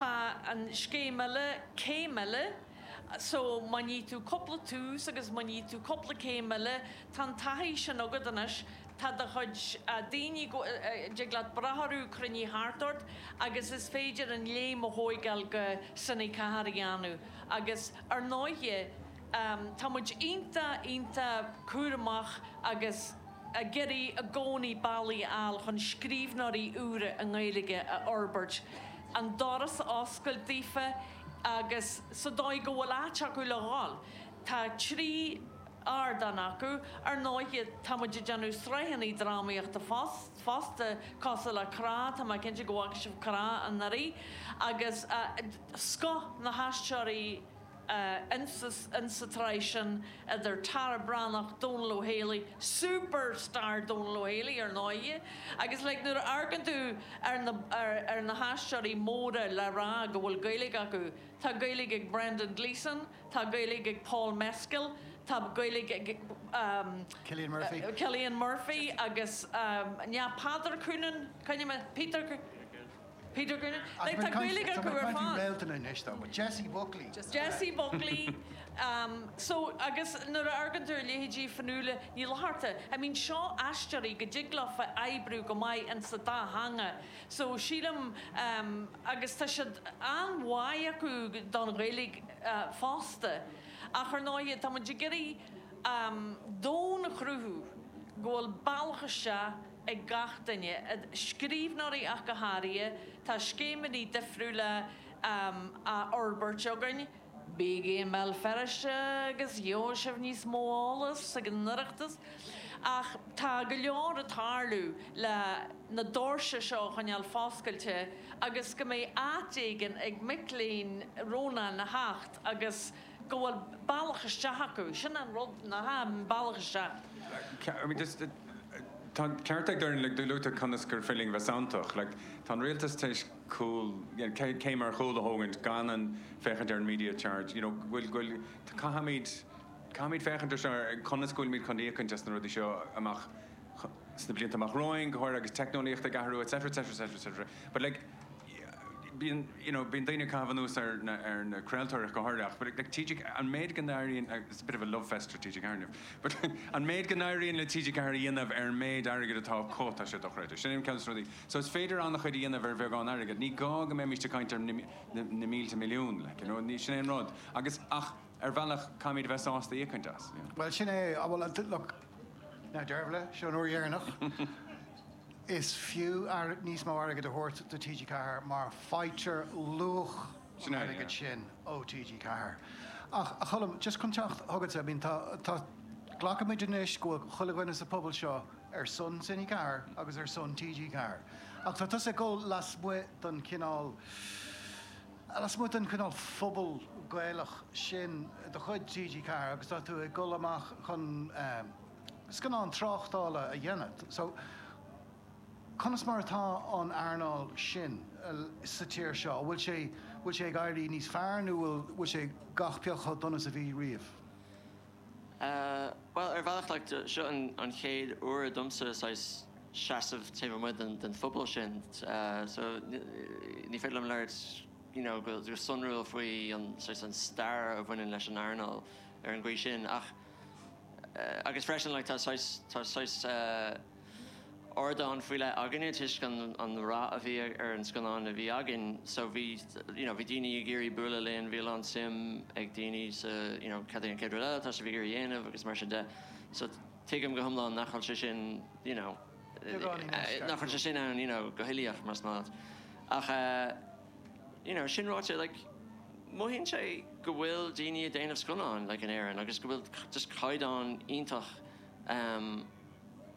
an scéim eile, Céim Eile, so má níonn tú cúpla Tús agus má níonn tú cúpla Céim Eile, tá an taithí sin agat anois, tá do chuid daoine go, dtig leat brath orthu cruinní thart ort agus is féidir an léim a thóigeáil go Cine4 a dhéanamh agus ar ndóighe tá muid iontach, iontach cúramach agus ag iarraidh i gcónaí bealaí a fháil chun scríbhneoirí úra i nGaeilge a fhorbairt. an doras a oscailt daofa agus sa dóigh go bhfuil áit acu le dhul. Tá trí ardán acu. Ar ndóighe, tá muid ag déanamh sraitheanna drámaíochta fosta, cosúil le Crá, tá mé cinnte go bhfaca sibh Crá anuraidh, agus scoth na haisteoirí, ins sa tsraith sin idir Tara Breathnach, Dónal Ó Héalaí, super star Dónal Ó Héalaí ar ndóigh, agus like nuair a amharcann tú ar na haisteoirí móra le rá go bhfuil Gaeilge acu, tá Gaeilge ag Brendan Gleeson, tá Gaeilge ag Paul Mescal, tá Gaeilge ag Cillian Murphy agus, yeah Peadar Coonan, Coonan, Peter, Peter Coonan, like tá Gaeilge acu ar fad. Tá réalta na anois dá bhfuil. Jessie Buckley. Jessie Buckley. So agus nuair a amharcann tú ar leithéidí Fionnuala Ní Fhlatharta, I mean seo aisteoirí go dtig leo bheith ag oibriú go maith in sa dá theanga. So sílim agus tá an-bháidh acu don Ghaeilge fosta. Ach ar ndóighe tá muid ag iarraidh domhain a chruthú go bhfuil bealach isteach, ag gach duine, scríbhneoirí ach go háirithe, tá scéimeanna difriúla á fhorbairt againn. Bígí i mBéal Feirste agus gheobhaidh sibh níos mó eolais ag an Oireachtas. Ach tá go leor ag tarlú le na doirse seo a choinneáil foscailte agus go mbeidh áit éigin ag mic léinn Rónáin a theacht agus go bhfuil bealach isteach acu. Sin an rud, bealach isteach. Tá an ceart ag Doireann, do luadar conas gur féidir linn bheith santach. Tá an rialtas tar éis cúl, céim ar chúl a thógaint gan féachaint ar an media charge. You know, bhfuil, bhfuil, caithfimid, caithfimid féachaint ar seo, ar conas go bhfuilimid chun íocaint as na rudaí seo amach. sna blianta amach romhainn, go háirithe agus teicneolaíocht ag athrú etc etc etc etc but like bíonn you know bíonn daoine ag caitheamh anuas ar na ar na craoltóirí go háirithe ach but like TG an méid go n-éiríonn it's a bit of a love fest for TG4 inniu but an méid go n-éiríonn le TG4 a dhéanamh ar an méid airgid atá acu tá sé dochreidte sin é ceann des na rudaí so is féidir an-chuid a dhéanamh ar bheagán airgid ní gá go mbeimíst ag caint ar na na na mílte milliún like you know ní sin é an rud agus ach ar bhealach caithfimid a bheith sásta íocaint as yeah. Bhuel sin é bhuel look Now Dervla, seo an uair dheireanach is fiú níos mó airgid a thabhairt do TG4 mar faightear luach an airgid sin ó TG4. Ach a Cholm, just chun teacht chugatsa, I mean tá, tá, glacann muid anois go bhfuil chuile dhuine sa phobal seo ar son TG4 agus ar son TG4 ach tá tusa ag dul lasmuigh don chineál, Lasmuigh den chineál phobal Gaelach sin de chuid TG4 agus tá tú ag dul amach chun scannán tráchtála a dhéanamh so conas mar atá an earnáil sin sa tír seo, an bhfuil sé, bhfuil sé ag éirí níos fearr nó bhfuil sé gach pioc chomh dona is a bhí riamh? Bhuel, ar bhealach, like, seo an chéad uair domsa saghas seasamh taobh amuigh den bhubble sin so ní féidir liom labhairt you know go sonrúil faoi an saghas an stair a bhaineann leis an earnáil ar an gcaoi sin ach agus freisin like tá saghas tá saghas eh ardán faoi leith againne toisc an an rath a bhí ar an scannán a bhí againn so bhí you know bhí daoine ag iarraidh bualadh linn, bhí a lán suim ag daoine sa you know cad é an chéad rud eile atá sibh ag iarraidh dhéanamh agus mar sin de so tuigim go hiomlán nach bhfuil sé sin you know nach bhfuil sé sin ann you know go huilíoch más maith leat ach eh you know sin ráite like mothaíonn sé go bhfuil daoine ag déanamh scannáin like in Éirinn agus go bhfuil just caighdeán iontach ehm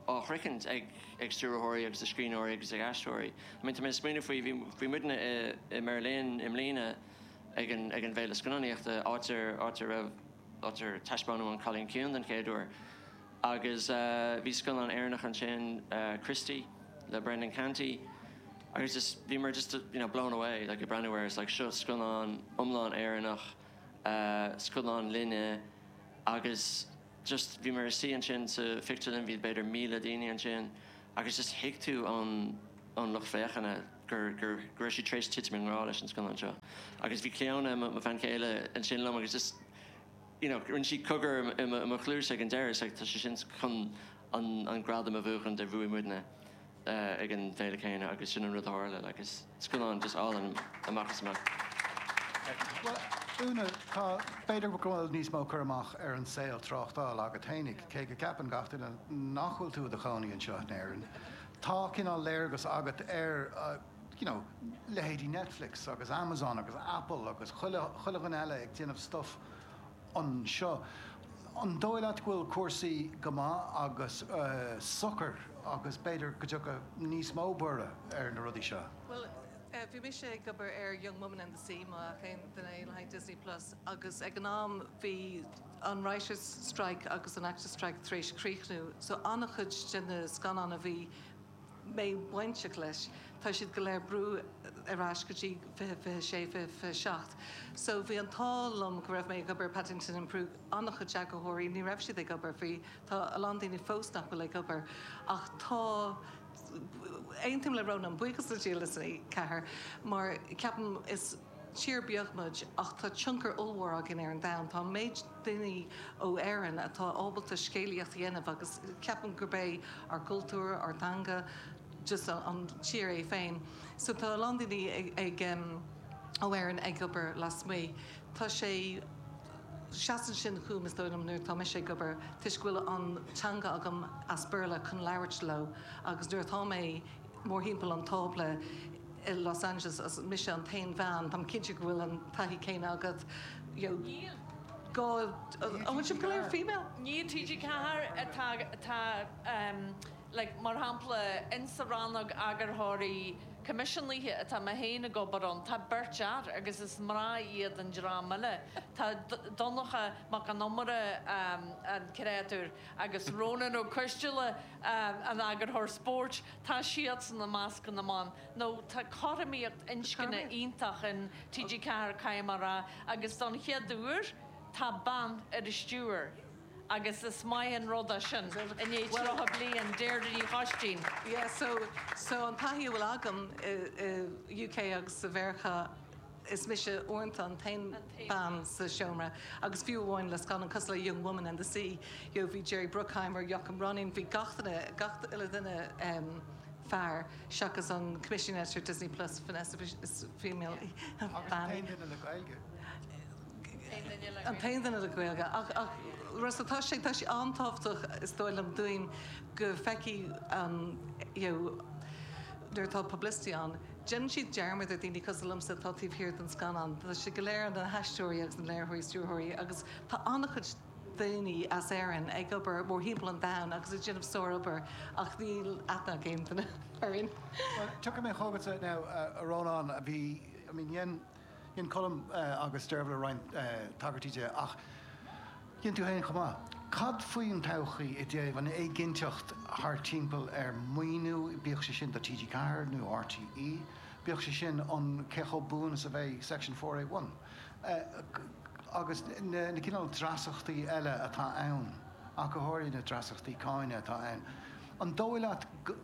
á shroichint ag stiúrthóirí agus ag scríbhneoirí agus ag aisteoirí. I mean tá mé ag smaoineamh faoi, bhí, bhí muidne i, i mBeirlín i mbliana ag an, ag an bhféile scannánaíochta, áit ar, áit ar raibh, áit ar taispeánadh An Cailín Ciúin den chéad uair agus eh bhí scannán Éireannach ansin eh Christy le Brendan Canty agus just, bhí muid just you know blown away like ag breathnú air is like seo scannán iomlán Éireannach eh scánlíne agus just bhí mé ar suí ansin sa phictiúrlann, bhí b'fhéidir míle daoine ansin agus just thuig tú ón ón lucht féachana gur gur go raibh siad tar éis titim i ngrá leis an scannán seo agus bhí Cleona, mo bhean chéile, ansin liom agus just you know rinne sí cogar i mo chluais ag an deireadh is like tá sé sin chun an an gradam a bhuachan a bhuaigh muidne. ag an bhféile céanna agus sin an rud a tharla like is scannán just álainn amach is amach. Bhuel, Úna, tá, b'fhéidir go bhfuil níos mó cur amach ar an saol tráchtála agat fhéinig, cé go ceapann gach duine nach bhfuil tú i do chónaí anseo in Éirinn, tá cineál léargas agat ar you know leithéidí Netflix agus Amazon agus Apple agus chuile dhream eile ag déanamh stuff anseo. An dóigh leat go bhfuil cúrsaí go maith agus socair agus b'fhéidir go dtiocfaidh níos mó borradh ar na rudaí seo? Bhuel, bhí mise ag obair ar Young Woman and the Sea, má fheiceann duine é le haghaidh Disney Plus, agus ag an am bhí an writers' strike agus an actors' strike tar éis críochnú, so an-chuid de na scannáin a bhí. mé bainteach leis. Tá siad go léir brú ar ais go dtí 2026, 2027 so bhí an t-ádh liom go raibh mé ag obair i Paddington in Peru an-chuid eagarthóirí ní raibh siad ag obair faoi tá a lán daoine fós nach bhfuil ag obair ach tá aontaím le Rónán buíochas le Dia le TG4 mar ceapaim is. Tír beag muid ach tá tionchar ollmhór againn ar an domhan. Tá an méid daoine ó Éirinn atá ábalta scéalaíocht a dhéanamh agus ceapaim gurb é ár gcultúr, ár dteanga, just an tír é féin. So tá a lán daoine ag, ó Éirinn ag obair lasmuigh. Tá sé, seasann sin dom is dóigh liom nuair atá mise ag obair toisc go bhfuil an teanga agam as Béarla chun labhairt leo agus nuair atá mé mórthimpeall an tábla i Los Angeles agus mise an t-aon bhean, táim cinnte go bhfuil an taithí céanna agat, you know. Níl. Go, an bhfuil sibh go léir female? Níl, TG4 atá, tá ehm like mar shampla in sa rannóg eagarthóirí coimisiúnaithe atá mé féin ag obair ann, tá beirt fhear agus is mná iad an dream eile. Tá Donncha Mac an Iomaire, ehm an créatúr, agus Rónán Ó Coisdeala, an t-eagarthóir spóirt, tá siadsan i measc na mban, nó tá cothromaíocht inscne iontach in TG4, caithfidh mé a rá, agus don chéad uair tá bean ar an stiúir agus is maith an rud é sin i ndiaidh 30 bliain, Deirdre Ní Choistín. Yeah so so an taithí a bhfuil agam i UK agus i Mheiriceá, is mise uaireanta an t-aon bean sa seomra agus fiú amháin le scannáin cosúil le Young Woman and the Sea you know bhí Jerry Bruckheimer, Joachim Rønning, bhí gach duine, gach uile dhuine em fear seachas an commissioning editor Disney Plus Vanessa Bush is female í, bean í. Agus an t-aon duine le Gaeilge. an t-aon duine le Gaeilge ach ach rud so tá sé tá sé an-tábhachtach is dóigh liom dúinn go bhfeicfidh an you know nuair atá publicity ann, Déanann siad dearmad ar dhaoine cosúil liomsa atá taobh thiar den scannán. Tá siad go léir, na haisteoirí agus na léiritheoirí is stiúrthóirí, agus tá an-chuid daoine as Éirinn ag obair mórthimpeall an domhain agus ag déanamh sárobair ach níl aithne ag aon duine orainn. Bhuel, tiocfaidh mé chugatsa now, a Rónáin. Bhí, I mean, dhein. Dhein Colm agus Dervla roinnt tagairtí di ach dhein tú féin chomh maith. Cad faoin todhchaí i dtaobh an éiginnteacht thart timpeall ar maoiniú, bíodh sé sin do TG4 nó RTÉ, bíodh sé sin an cé chomh buan is a bheidh Section Four Eight One agus na cineálacha dreasachtaí eile atá ann, ach go háirithe na dreasachtaí cáine atá ann. An dóigh leat go.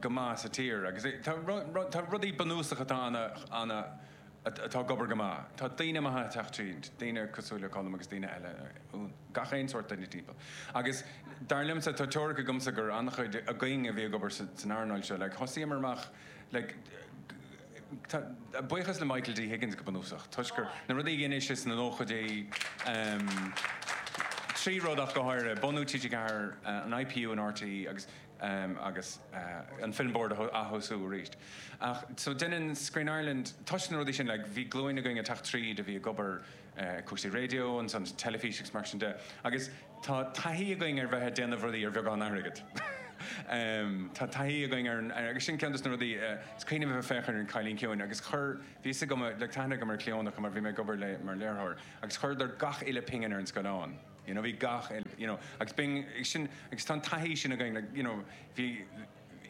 go maith sa tír agus tá rudaí bunúsacha atá ann atá ag obair go maith. Tá daoine maithe ag teacht tríd, daoine cosúil le Colm agus daoine eile, gach aon sórt duine timpeall. Agus dar liomsa, tá teoiric agamsa gur an-chuid againn a bhí ag obair san earnáil seo. Thosaíomar amach, buíochas le Michael D Higgins go bunúsach, toisc gur, na rudaí a dhein sé sna nóchaidí, trí rud ach go háirithe, bunú TG4, an IPU in RTÉ agus em, agus, eh, an Film Board a ath-thosú arís. Ach, so, deineann Screen Ireland, toisc na rudaí sin, like, bhí glúin againn ag teacht tríd a bhí ag obair, eh, ag cúrsaí raidió, ansan teilifís agus mar sin de, agus tá taithí againn ar bheith ag déanamh rudaí ar bheagán airgead. em, tá taithí againn ar an, agus sin ceann dos na rudaí, eh, is cuimhin liom a bheith ag féachaint ar An Cailín Ciúin agus chuir, bhí fhios agam, like, tá aithne agam ar Cleona mar bhí mé ag obair léi mar léiritheoir agus chuireadar gach uile pingin ar an scáileán. you know bhí gach uile you know agus bíonn sin agus tá an taithí sin againn like you know bhí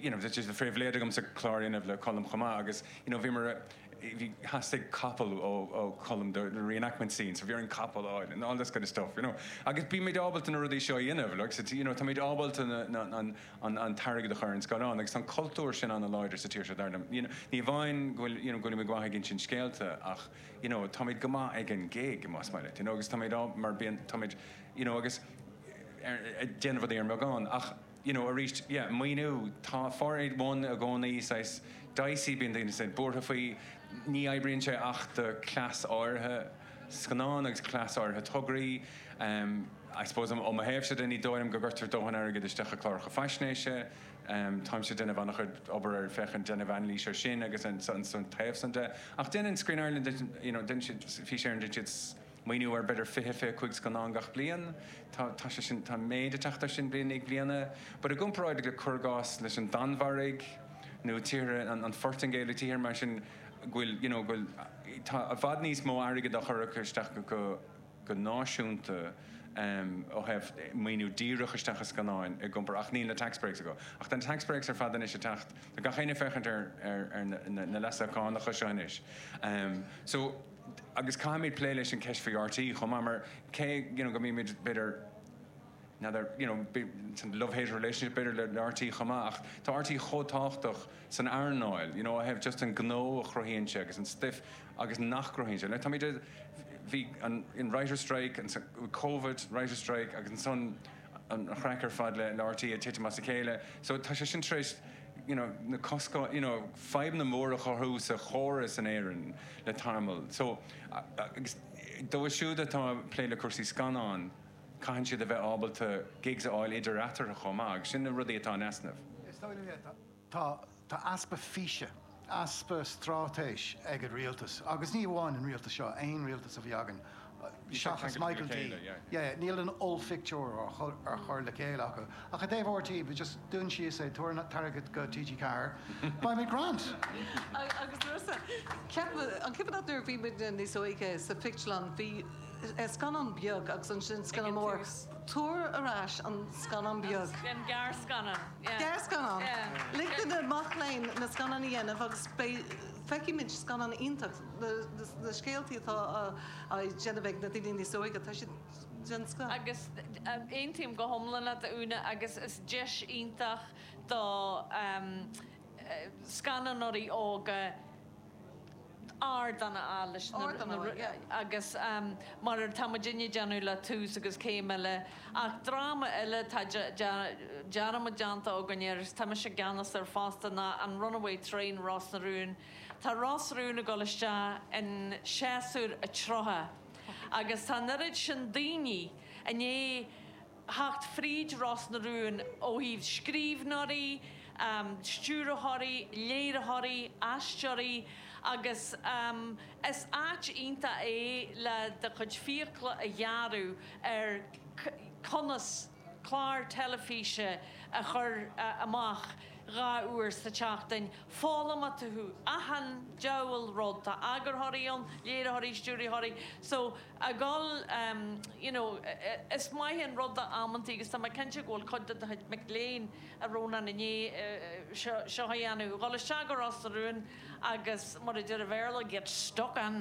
you know just de phribhléid agam sa chlár inniu le Colm chomh maith agus you know bhíomar bhí theastaigh capall ó ó Colm do na reenactment scenes so bhí orainn capall a fháil and all this kind of stuff you know agus bímid ábalta na rudaí seo a dhéanamh like so you know táimid ábalta na na an an an t-airgead a chur ar an scáileán agus tá an cultúr sin an-láidir sa tír seo dar liom you know ní amháin go bhfuil you know go bhfuilimid go maith ag insint scéalta ach you know táimid go maith ag an gig más maith leat you know agus táimid á mar bíonn táimid you know agus ar ag déanamh rudaí ar an mbeagán ach you know arís yeah maoiniú tá four eight one i gcónaí saghas dicey bíonn daoine saghas buartha faoi ní oibríonn sé ach do class áirithe scannán agus class áirithe tograí ehm I suppose ó mo thaobhsa de ní dóigh liom go gcuirtear dóthain airgid isteach i cláracha faisnéise Táimse ag déanamh an-chuid obair ar féachaint déanamh anailís ar sin agus an taobh san de ach déanann Screen Ireland you know déanann siad Fís Éireann déanann siad maoiniú ar b'fhéidir fiche, fiche cúig scannán gach bliain. Tá tá sé sin tá méadú ag teacht ar sin bliain i ndiaidh bliana but i gcomparáid le cuir i gcás leis an Danmhairg nó tíortha an an Phortaingéil nó tíortha mar sin go bhfuil you know go bhfuil tá i bhfad níos mó airgead á chur isteach go go náisiúnta ó thaobh maoiniú díreach isteach i scannáin i gcompar ach níl na tax breaks acu. Ach tá na tax breaks ar fad anois ag teacht. Tá gach éinne ag féachaint ar na leasuithe cánacha seo anois. So agus caithfimid plé leis an ceist faoi RTÉ chomh maith mar cé you know go mbímid b'fhéidir, n'fheadar you know bíonn an love hate relationship b'fhéidir le RTÉ chomh maith ach tá RTÉ chomh tábhachtach san earnáil you know ó thaobh just an gnó a chruthaíonn sé agus an stuif agus má chruthaíonn sé le táimid ag bhí an in writer strike an covid writer strike agus ansan an chraic ar fad le le RTÉ ag titim as a chéile so tá sé sin tar éis you know na coscáin you know fadhbanna móra a chruthú sa chóras in Éirinn le tamall anois agus dóibh siúd atá ag plé le cúrsaí scannán Caithfidh siad a bheith ábalta gigs a fháil idir eatarthu chomh maith agus sin na rudaí atá in easnamh. Is dóigh liom é. Tá easpa físe, easpa stráitéis ag an rialtas agus ní amháin an rialtas seo, aon rialtas a bhí againn seachas Michael D. Yeah, níl an ollphictiúr á chur le chéile acu. Ach i dtaobh RTÉ, just dún síos é, tabhair an t-airgead go TG4, beimid grand! Agus uireasa, ceapaim, an cuimhin leat nuair a bhí muidne níos óige sa phictiúrlann, bhí. Scannán beag agus ansin scannán mór. Tabhair ar ais an scannán beag. Gearrscannán. Gearrscannán. Lig do na mac léinn na scannáin a dhéanamh agus feicfidh muid scannáin iontacha, na scéaltaí atá á déanamh ag na daoine níos óige, tá siad den scoth. Agus aontaím go hiomlán leat a Úna agus is deis iontach do scannánóirí óga, ardán a fháil leis na Ardán a fháil, yeah. agus mar atá muidinne ag déanamh le Tús agus Céim Eile ach dráma eile tá dearmad déanta againn air agus tá mise i gceannas air fosta ná an Runaway Train Ros na Rún. Tá Ros na Rún ag dul isteach in séasúr a 30 agus tá an oiread sin daoine i ndiaidh, theacht fríd Ros na Rún ó thaobh scríbhneoirí, stiúrthóirí, léiritheoirí, aisteoirí agus is áit iontach é le do chuid fiacla a ghearradh ar conas clár teilifíse a chur amach dhá uair sa tseachtain, foghlaimeoidh tú achan diabhal rud, tá eagarthóirí ann, léiritheoirí, stiúrthóirí. a dhul you know is maith an rud amantaí agus tá mé cinnte go bhfuil cuid de do chuid mic léinn ariamh anall i ndiaidh seo a dhéanamh, dhul isteach go Ros na Rún agus mar a deir an Béarla get stuck in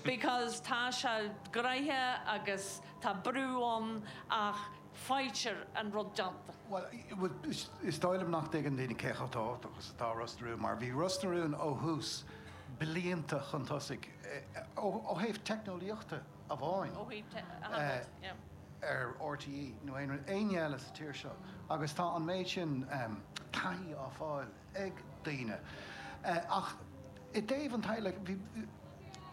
because tá sé gnoitheach agus tá brú ann ach faightear an rud déanta. Bhuel, is dóigh liom nach dtuigeann daoine cé chomh tábhachtach is atá Ros na Rún mar bhí Ros na Rún ó thús, blianta chun tosaigh ó thaobh teicneolaíochta amháin ar RTÉ nó éinne eile sa tír seo agus tá an méid sin taithí á fháil ag daoine ach i dtaobh an teaghlaigh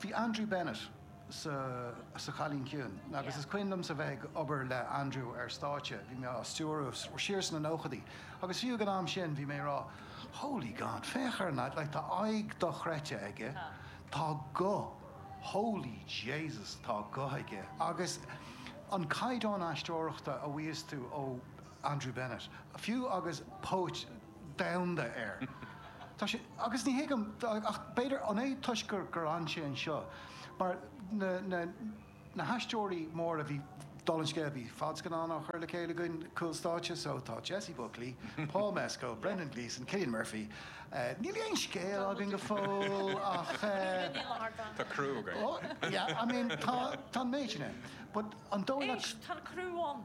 bhí Andrew Bennett sa Chailín Ciúin agus is cuimhin liomsa bheith ag obair le Andrew ar stáitse bhí mé á stiúradh, siar sna nóchaidí agus fiú ag an am sin bhí mé ag rá 'Holy God féach ar an lad, tá aghaidh dochreidte aige'. Tá guth, holy Jesus tá guth aige agus an caighdeán aisteoireachta a fhaigheas tú ó Andrew Bennett, fiú agus póit an domhain air, tá sé, agus ní thuigim, ach b'fhéidir an é toisc gur fhan sé anseo mar na, na haisteoirí móra a bhí dul an scéal a bhí fadscannán á chur le chéile againn cúl stáitse so tá Jessie Buckley, Paul Mescal, Brendan Gleeson, Cillian Murphy níl aon scéal againn go fóill ach eh tá criú againn yeah I mean tá tá an méid sin ann but an dóigh leat? Éist, tá an criú ann.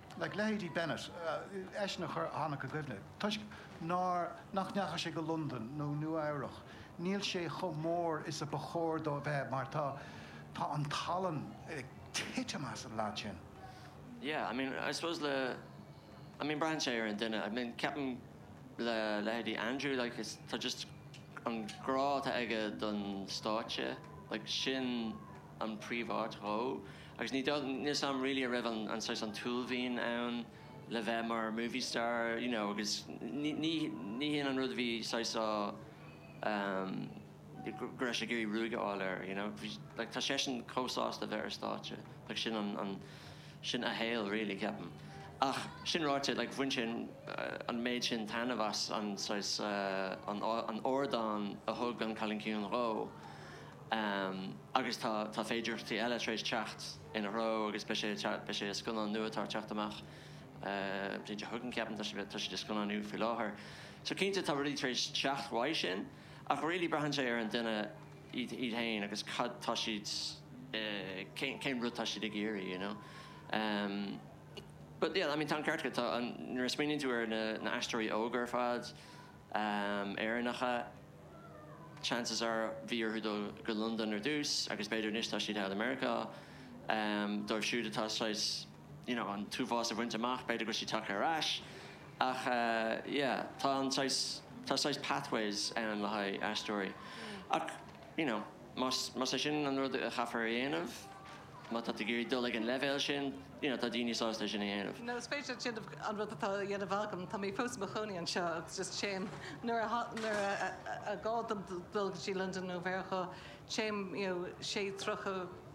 like leithéidí Bennett, eisean a chuir a tháinig i gcuimhne dom, toisc nár, nach ndeachaigh sé go Londain nó Nua Eabhrach, níl sé chomh mór is a ba chóir dó a bheith mar tá, tá an tallann ag titim as an lead sin. Yeah, I mean, I suppose le, I mean braitheann sé ar an duine, I mean ceapaim le leithéidí Andrew, like is, tá just an grá atá aige don stáitse, like sin an príomháit dhó. Agus ní dóigh liom am really a raibh an an saghas an t-uaillmhian ann le bheith mar movie star you know agus ní ní ní hin an rud a bhí saghas á ehm go raibh sé ag iarraidh greim a fháil air you know bhí like tá seisean chomh sásta a bheith ar stáitse like sin an an sin a shaol really ceapaim. Ach sin ráite like bhain sé an an méid sin taitneamh as an saghas eh an an ardán a thug an Cailín Ciúin dhó. Amm, agus tá, tá féidireachtaí eile tar éis teacht ina threo agus beidh sé, beidh sé, scannán nua atá ag teacht amach, amm, Báite a thugann ceapaim, tá sé, tá sé á scannánú faoi láthair. So cinnte tá rudaí tar éis teacht uaidh sin ach really braitheann sé ar an duine iad, iad féin agus cad tá siad eh, cén, cén rud tá siad ag iarraidh you know. Amm, but yeah, I mean tá an ceart agat, tá an, nuair a smaoiníonn tú ar na, na haisteoirí óga ar fad, amm, Éireannacha, Chances are bhí orthu dul go Londain ar dtús agus b'fhéidir anois tá siad thall i Meiriceá. Dóibh siúd atá saghas, you know, an t-uafás a bhaint amach, b'fhéidir go bhfuil siad tagtha ar ais. Ach yeah, tá an saghas, tá saghas pathways ann le haghaidh aisteoirí. Ach, you know. Más é sin an rud a chaithfear a dhéanamh, má tá tú ag iarraidh dul chuig an leibhéal sin, you know, tá daoine sásta é sin a dhéanamh. Nó, is féidir déanamh an rud atá á dhéanamh agam, tá mé fós i mo chónaí anseo agus just téim nuair a, nuair a, a, a, a gá dom dul go dtí Londain nó Meiriceá, téim, you know, sé, tríocha,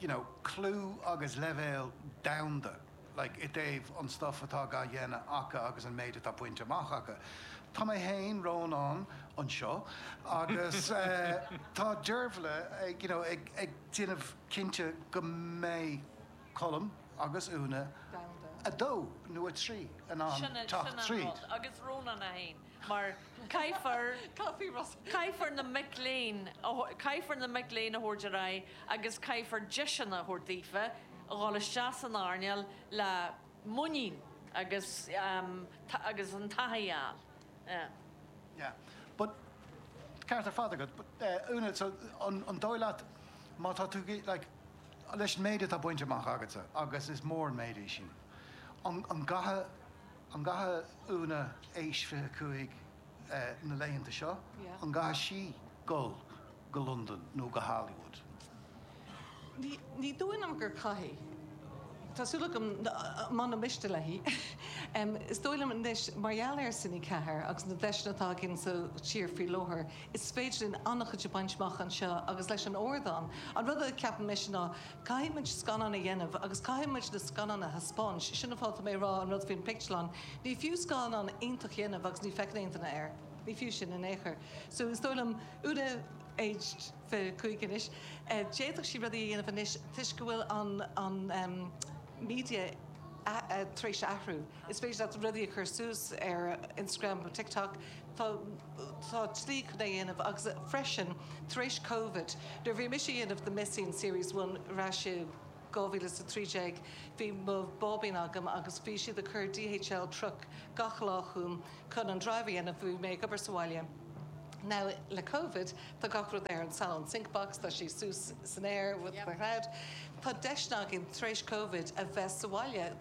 you know clú ag leibhéal domhanda like i dtaobh an stuff atá ga dhéanamh acu agus an méid atá bainte amach acu. Tá mé féin, Rónán a haon, anseo agus tá Deirbhle ag you know ag ag déanamh cinnte go mbeidh Colm agus Úna a dó nó a trí in ann teacht tríd. Sin an rud. mar caithfear caithfear na mic léinn a caithfear na mic léinn a thabhairt ar aghaidh agus caithfear deiseanna a thabhairt daofa a dhul isteach san earnáil le muinín agus agus an taithí a fháil. Yeah. Yeah. But ceart ar fad agat. But eh Úna so an an dóigh leat má tá tú like leis an méid atá bainte amach agatsa agus is mór an méid é sin, an an gcaithfidh An gcaithfidh Úna, aois 25, na laethanta seo? An gcaithfidh sí dul go Londain nó go Hollywood? Ní dóigh liom gur caithfidh. Tá súil agam mura miste léi. Is dóigh liom anois mar gheall ar Cine4 agus na deiseanna atá againn sa tír faoi láthair, is féidir linn an-chuid a bhaint amach anseo agus leis an ardán. An rud a ceapaim mise ná. Caithfidh muid scannán a dhéanamh agus caithfidh muid na scannáin a thaispeáint. Sin an fáth atá mé ag rá an rud faoin pictiúrlann. Ní fiú scannán iontach a dhéanamh agus ní feiceann aon duine air. Ní fiú sin in aon chor. So is dóigh liom Úna, aged fiche a cúig anois, d'fhéadfadh sí rudaí a dhéanamh anois toisc go bhfuil an media tar éis athrú. Is féidir leat rudaí a chur suas ar Instagram nó TikTok. Tá slí chun é a dhéanamh agus freisin tar éis Covid nuair a bhí mise ag déanamh The Missing, Series One ar ais i 2013 bhí mo bháibín agam agus bhí siad ag cur DHL truck gach lá chugam chun an drive a dhéanamh bhí mé ag obair sa bhaile. Now le Covid tá gach rud ar an Salon sync box, tá sé suas san aer with the cloud. Tá deiseanna againn tar éis Covid a bheith sa bhaile.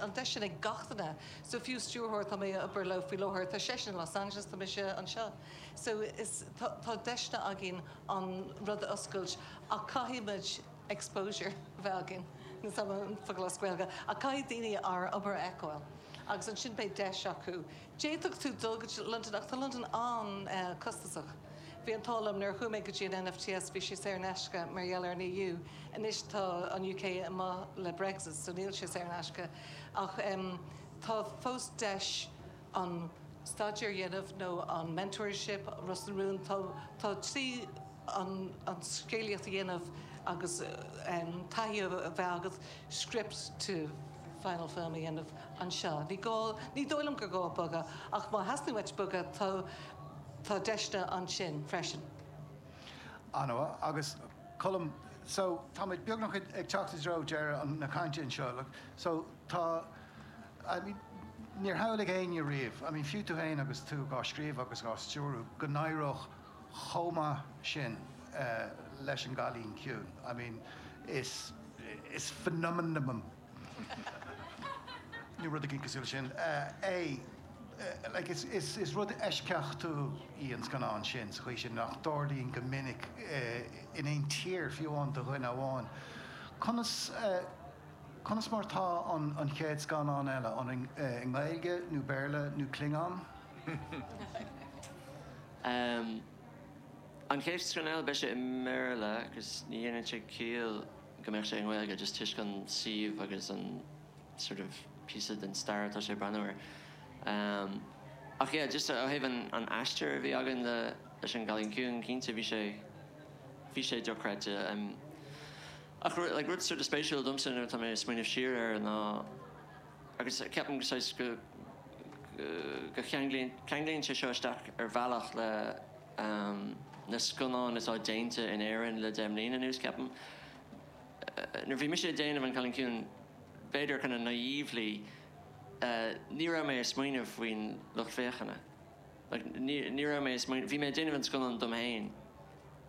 an deis sin ag gach duine so fiú stiúrthóir atá mé ag obair leo faoi láthair tá seisean i Los Angeles tá mise anseo so is tá tá deiseanna againn an rud a oscailt ach caithfidh muid exposure a bheith againn níl a fhios agam an focal as Gaeilge ach caithfidh daoine ár obair a fheiceáil agus ansin beidh deis acu D'fhéadfadh tú dul go dtí Londain ach tá Londain an-chostasach. Bhí an t-ádh liom nuair a chuaigh mé go dtí an NFTS bhí sé saor in aisce mar gheall ar an EU. Anois tá an UK amuigh le Brexit so níl sé saor in aisce ach tá fós deis an staidéar a dhéanamh nó an mentorship, Ros na Rún, tá tá trí an scéalaíocht a dhéanamh agus taithí a bheith agat, script to. final film a dhéanamh anseo. Ní gá, ní dóigh liom gur gá bogadh ach má theastaíonn uait bogadh tá, tá deiseanna ansin freisin. Ana-mhaith. Agus Colm, so táimid beagnach ag teacht i dtreo deireadh na cainte anseo. So tá, I mean níor shamhlaigh éinne riamh, I mean fiú tú féin agus tú dhá scríobh agus dhá stiúradh go n-éireodh chomh maith sin leis an gCailín Ciúin. I mean is is phenomenon nó rud éigin cosúil leis sin é. Like is is is rud eisceachtúil í an scannán sin sa chaoi sin nach dtarlaíonn go minic in aon tír, fiú amháin do dhuine amháin. Conas conas mar atá an an chéad scannán eile? An i nGaeilge nó Béarla nó Klingon? Amm. An chéad scannán eile, beidh sé i mBéarla agus ní dhéanann sé ciall go mbeadh sé i nGaeilge, just toisc an suíomh agus an sort of píosa den stair atá sé ag breathnú air. Amm. Ach yeah, just ó thaobh an aistir a bhí againn le, leis an gCailín Ciúin, cinnte, bhí sé, bhí sé dochreidte. Amm. Ach like rud sort of spéisiúil domsa nuair atá mé ag smaoineamh siar air ná, agus ceapaim go saghas go go cheanglaíonn ceanglaíonn sé seo isteach ar bhealach le na scannáin atá déanta in Éirinn le deich mbliana anuas ceapaim nuair bhí mise ag déanamh An Cailín Ciúin b'fhéidir kind of naively ní raibh mé ag smaoineamh faoin lucht féachana like ní raibh mé ag smaoineamh bhí mé ag déanamh an scannán dom féin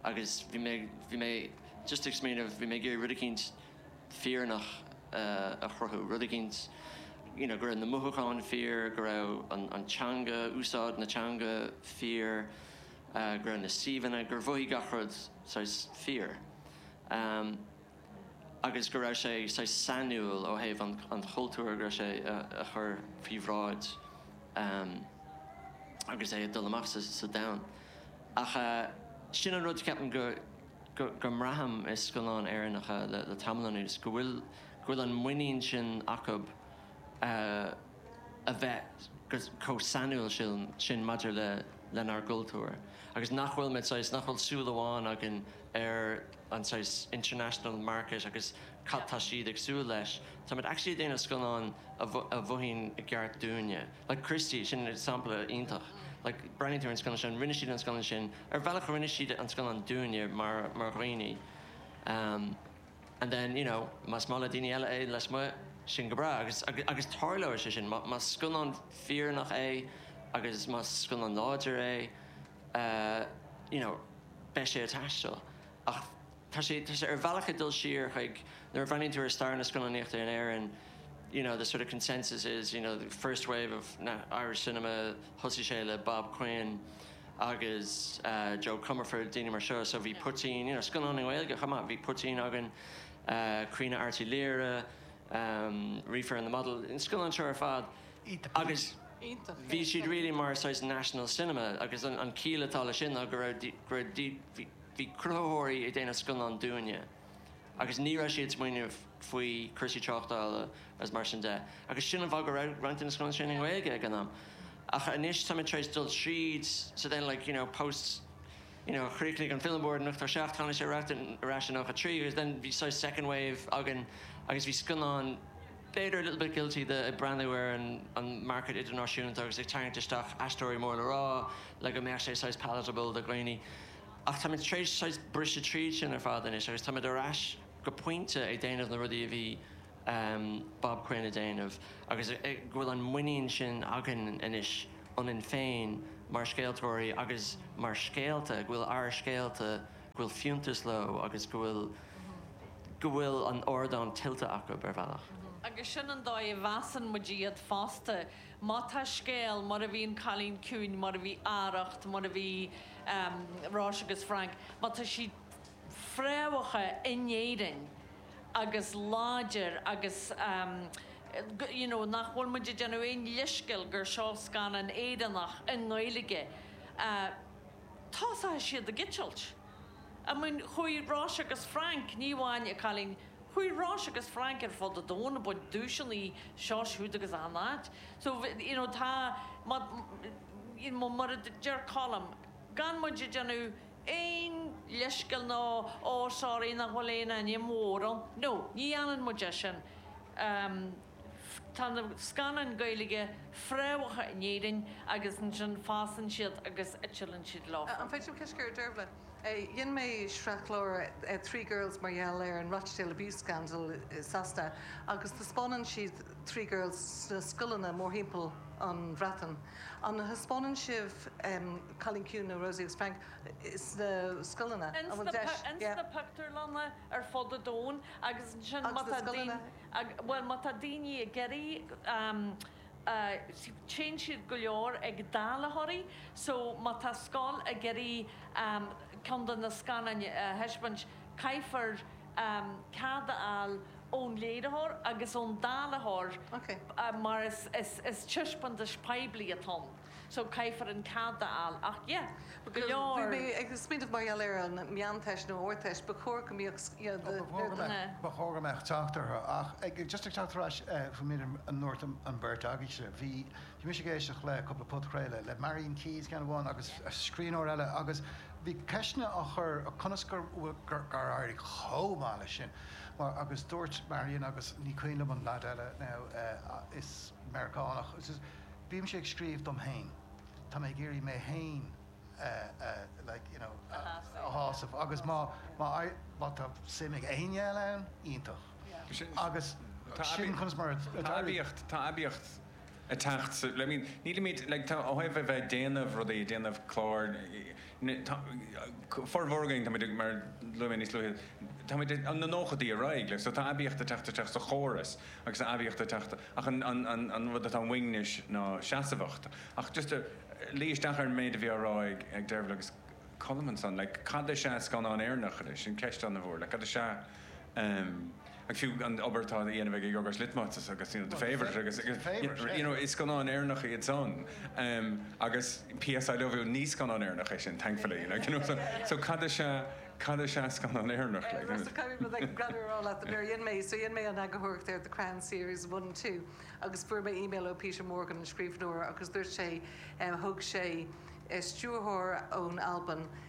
agus bhí mé bhí mé just ag smaoineamh bhí mé ag iarraidh rud eicínt fírinneach a chruthú, rud éigin you know go raibh na mothúcháin fíor, go raibh an teanga, úsáid na teanga fíor, go raibh na suíomhanna, gur mhothaigh gach rud saghas fíor agus go raibh sé saghas sainiúil ó thaobh an chultúir go raibh sé a chur faoi bhráid agus é ag dul amach sa domhan ach sin an rud ceapaim go go mbraithim i scannáin Éireannacha le tamall anuas go bhfuil an muinín sin acu a bheith chomh sainiúil sin maidir lenár gcultúr agus nach bhfuil muid saghas nach bhfuil súil amháin againn ar an saghas international market agus cad tá siad ag súil leis? Táimid actually ag déanamh scannán a mhothaíonn i gceart dúinne. Like Christy, sin an sampla iontach. Like breathnaíonn tú ar an scannán sin, rinne siad an scannán sin, ar bhealach rinne siad an scannán dúinne mar dhaoine. And then, you know, más maith le daoine eile é lasmuigh, sin go breá agus, agus tarlóidh sé sin. Más scannán fírinneach é agus más scannán láidir é, you know, beidh sé ag taisteal. Ach. tá sé tá sé ar bhealach ag dul siar chuig nuair a bhreathnaíonn tú ar stair na scannánaíochta in Éirinn you know the sort of consensus is you know the first wave of na Irish cinema thosaigh sé le Bob Quinn agus eh Joe Comerford daoine mar seo so bhí poitín you know scannáin i nGaeilge chomh maith bhí poitín againn eh Caoineadh Airt Uí Laoghaire ehm Reefer and the Model na scannáin seo ar fad Iontach agus Iontach bhí siad really mar saghas national cinema agus an an chiall atá le sin ná go raibh go raibh bhí Bhí cruthaitheoirí ag déanamh scannán dúinne agus ní raibh siad ag smaoineamh faoi cúrsaí tráchtála agus mar sin de agus sin an fáth go raibh roinnt de na scannáin sin i nGaeilge ag an am ach anois táimid tar éis dul tríd so then like you know post you know chríochnaigh an Film Board in 87 tháinig sé ar ais in 93 agus then bhí saghas second wave againn agus bhí scannáin, b'fhéidir, a little bit guilty de ag breathnú ar an an market idirnáisiúnta agus ag tarraingt isteach aisteoirí mór le rá le go mbeadh sé saghas palatable do dhaoine. Ach táimid tar éis saghas briseadh tríd sin ar fad anois agus táimid ar ais go pointe ag déanamh na rudaí a bhí Bob Quinn ag déanamh agus go bhfuil an muinín sin againn anois ionainn féin mar scéaltóirí agus mar scéalta, go bhfuil ár scéalta, go bhfuil fiúntas leo agus go bhfuil, go bhfuil an ardán tuillte acu ar bhealach. Agus sin an dóigh a mheasann muid iad fosta. Má tá scéal, mar a bhí an Cailín Ciúin, mar a bhí Arracht, mar a bhí Róise agus Frank, má tá siad fréamhaithe in Éirinn agus láidir agus you know nach bhfuil muid ag déanamh aon leithscéal gur seo scannán Éireannach i nGaeilge, tosóidh siad ag eitilt. I mean, chuaigh Róise agus Frank, ní amháin An Cailín, chuaigh Róise agus Frank ar fud an domhain ag baint duaiseanna anseo, ansiúd agus achan áit. So, you know, tá, má, you know, mar a deir Colm, gan muid ag déanamh aon leithscéal nó, oh, sorry, nach bhfuil aon ainm mhór ann, no, ní dhéanann muid é sin. Tá na scannáin Gaeilge fréamhaithe in Éirinn agus ansin fásann siad agus tuilleann siad leo. An féidir liom ceist a chur, Dearbhla? Dhein mé sraithchlár Three Girls mar gheall ar an Rochdale Abuse Scandal i Sasana agus taispeánann siad Three Girls sna scoileanna mórthimpeall an Bhreatain. An dtaispeánann sibh Cailín Ciúin nó Róise agus Frank sna scoileanna? An bhfuil deis? Ins na pictiúrlanna ar fud an domhain agus ansin má tá daoine. Ag, bhuel má tá daoine ag iarraidh am téann siad go leor ag dáileoirí so má tá scoil ag iarraidh am ceann de na scannáin a thaispeáint caithfear am cead a fháil ón léiritheoir agus ón dáileoir mar is taispeántas poiblí atá ann. so caithfear an cead a fháil ach yeah but go leor. Bhí mé ag smaoineamh mar gheall ar an meánteist nó ardteist ba chóir go mbíodh you know the bearta. Ba chóir go mbeadh teacht orthu ach ag just ag teacht ar ais faoin méid a ndúirt an bheirt agaibhse, bhí mise ag éisteacht le cúpla podchraoladh le Marian Keyes ceann amháin agus scríbhneoir eile agus bhí ceisteanna á chur conas gur bhfuil gur éirigh chomh maith leis sin mar agus dúirt Marian agus ní cuimhin liom an leaid eile now is Meiriceánach Bímse ag scríobh dom féin. Tá mé ag iarraidh mé féin a shásamh agus má tá suim ag éinne eile ann, iontach. Agus sin conas mar a d'éirigh. Tá aibíocht ag teacht sa. Nílimid, ó thaobh a bheith ag déanamh rudaí, ag déanamh cláir, Formhór againn, táimid ag, mar a luaigh mé níos luaithe, táimid ó na nóchaidí ar aghaidh, like, so tá aibíocht ag teacht isteach sa chóras agus tá aibíocht ag teacht, ach an, an, an, an rud atá uainn anois ná seasmhacht. Ach just a, luí isteach ar an méid a bhí á rá ag, ag Dearbhla agus Colm ansan, like, cad is ea scannán Éireannach anois, sin ceist an-mhór, like, cad is ea, em, ag fiú an obair atá á dhéanamh ag ag Yorgos Lanthimos agus you know the Favourite agus agus Favourite you know is scannáin Éireannacha iad san agus PS I Love You ní scannán Éireannach é sin thankfully like you know so so cad is ea cad is ea scannán Éireannach like you know caithfidh mé a rá leat nuair a dhéan mé so dhéan mé an eagarthóireacht ar The Crown series one two agus fuair mé email ó Peter Morgan an scríbhneoir agus dúirt sé thug sé stiúrthóir ón Albain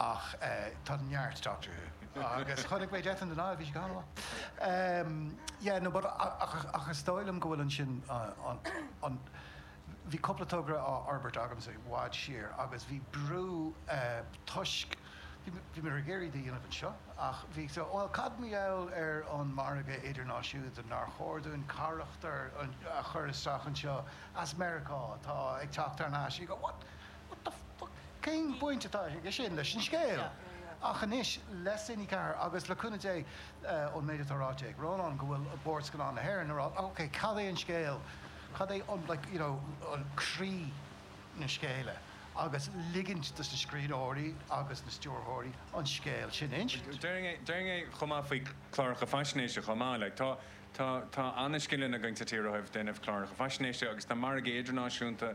Ach tá neart Doctor Who. Agus chonaic mé Death on the Nile, bhí sé go han-mhaith. Yeah, no but ach ach is dóigh liom go bhfuil ansin an an. Bhí cúpla togra á fhorbairt agamsa i bhfad siar agus bhí brú toisc bhí mé ag iarraidh iad a dhéanamh anseo ach bhí so bhuel cad mar gheall ar an margadh idirnáisiúnta nár chóir dúinn carachtar a chur isteach anseo as Meiriceá atá ag teacht thar n-ais you go what? What the fuck? Cén bhaint atá aige sin leis an scéal? Ach anois, le Cine4 agus le cúnamh Dé, ón méid atá ráite ag Rónán go bhfuil Bord Scannán na hÉireann ag rá ok, cad é an scéal, cad é an like, you know, an croí na scéala agus ligint dos na scríbhneoirí agus na stiúrthóirí an scéal sin a insint. Déarfainn é chomh maith faoi cláracha faisnéise chomh maith. Like, tá, tá, tá ana-scileanna againn sa tír ó thaobh déanamh cláracha faisnéise agus tá margaí idirnáisiúnta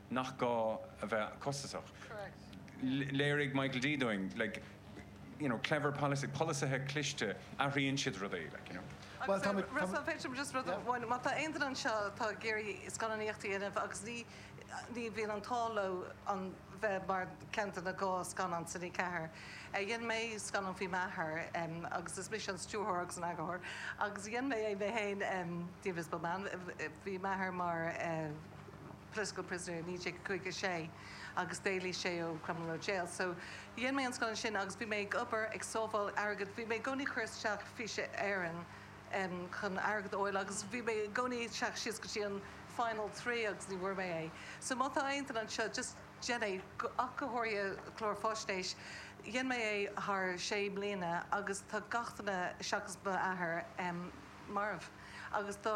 nach gá a bheith costasach. Léirigh Michael D dúinn you know clever policy, polasaithe cliste, athraíonn siad rudaí like you know. Agus ar Russell, an féidir just rud amháin, má tá aon duine anseo atá ag iarraidh scannánaíocht a dhéanamh agus ní ní bhíonn an t-ádh leo a bheith mar ceann de na dhá scannán sa Cine4. Dhéan mé scannán faoi m'athair agus is mise an stiúrthóir agus an eagarthóir agus dhéan mé é mé féin The Invisible Man, bhí m'athair mar eh, political prisoner i 1956 agus d'éalaigh sé ó Crumlin Road Jail so dhein mé an scannán sin agus bhí mé ag obair ag sábháil airgead bhí mé i gcónaí ag cur isteach Fís Éireann em chun airgead a fháil agus bhí mé i gcónaí ag teacht síos go dtí an final three agus ní bhfuair mé é so má tá aon duine anseo just déan é ach go háirithe clár faisnéis dhein mé é thar sé mbliana agus tá gach duine seachas m'athair em marbh agus dá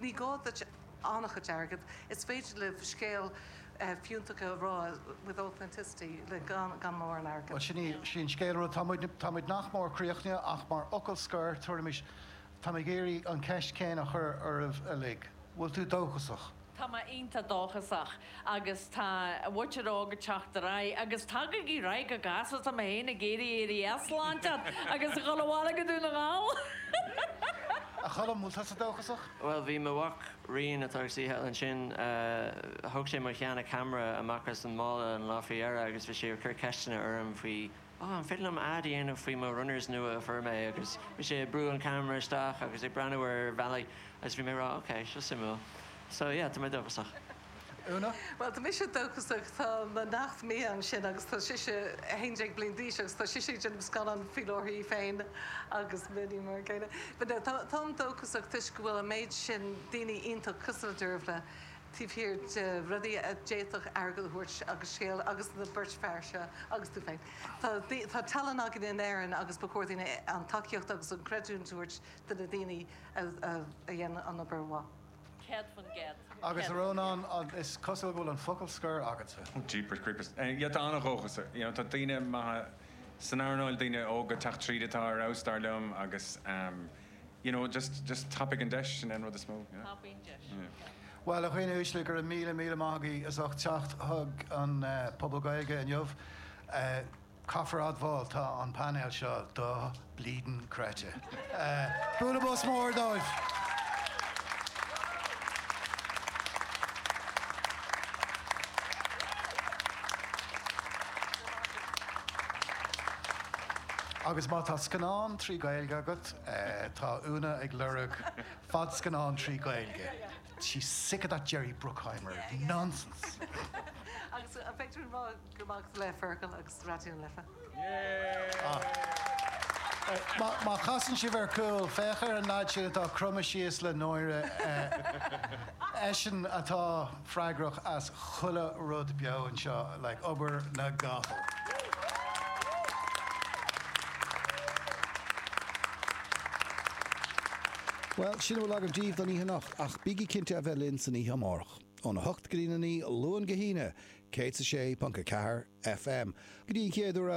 Ní gá duit an-chuid airgid, is féidir libh scéal fiúntach a rá with authenticity le gan mórán airgid. Bhuel, sin í an scéal rud, tá muid, tá muid nach mór críochnaithe ach mar fhocal scoir, tabharfaimis, táim ag iarraidh an cheist chéanna a chur oraibh uilig, bhfuil tú dóchasach? Tá mé iontach dóchasach. agus tá an mhuintir óg ag teacht ar aghaidh agus tagaigí ar aghaidh go gasta tá mé féin ag iarraidh éirí as lá inteacht agus a dhul abhaile go Dún na nGall. A Cholm, bhfuil tusa dóchasach? Bhuel, bhí mo mhac Rian, atá ag suí thall ansin, thug sé mo sheana-camera amach as an mála an lá faoi dheireadh agus bhí sé ag cur ceisteanna orm faoi Oh, an féidir liom ad a dhéanamh faoi mo runners nua a fuair mé? Agus bhí sé ag brú an camera isteach agus ag breathnú ar bhealaí agus bhí mé ag rá ok, seo suimiúil. So yeah, tá mé dóchasach. Úna? Bhuel, tá mise dóchasach. Tá mo neacht Mia ansin agus tá sise 11 bliain d'aois agus tá sise ag déanamh scannán faoi láthair í féin agus Minnie mar an gcéanna. But no, tá, táim dóchasach toisc go bhfuil an méid sin daoine iontach cosúil le Deirbhile. taobh thiar de rudaí a d'fhéadfadh airgead a thabhairt agus scéal agus na beirt fear seo agus tú féin. Tá tallann againn in Éirinn agus ba chóir dúinn an tacaíocht agus an creidiúint a thabhairt do na daoine a dhéanann an obair mhaith. Céad faoin gcéad. Agus Rónán, is cosúil go bhfuil an focal scoir agatsa. Jeepers creepers. Yeah tá an-dhóchas you know tá daoine maithe san earnáil, daoine óga ag teacht tríd atá ar fheabhas dar liom agus ehm, You know, just, just tapaigh an deis sin ar an rud is mó, you know. Tapaigh an deis, ok. Bhuel, a dhaoine uaisle, go raibh míle, míle maith agaibh as ucht teacht chuig an pobal Gaeilge inniu. Caithfear admháil, tá an painéal seo do-bhleedin creidte. Bualadh bos mór dóibh! Agus má tá scannán trí Ghaeilge agat, tá Úna ag lorg fadscannán trí Ghaeilge. She's sick of that Jerry Bruckheimer nonsense! Agus má fheiceann tú rud gur maith agat le Feargal agus Raidió na Life? Má chasann sibh ar cúl, féach ar an leaid sin atá cromtha síos le náire. Eisean atá. freagrach as chuile rud beo anseo, like obair na gcapall. Bhuel, sin a bhfuil agam daoibh don oíche anocht, ach bígí cinnte a bheith linn san oíche amárach, óna hocht go dtí a naoi, Luan go hAoine, 106.4 FM. Go dtí an chéad uair eile!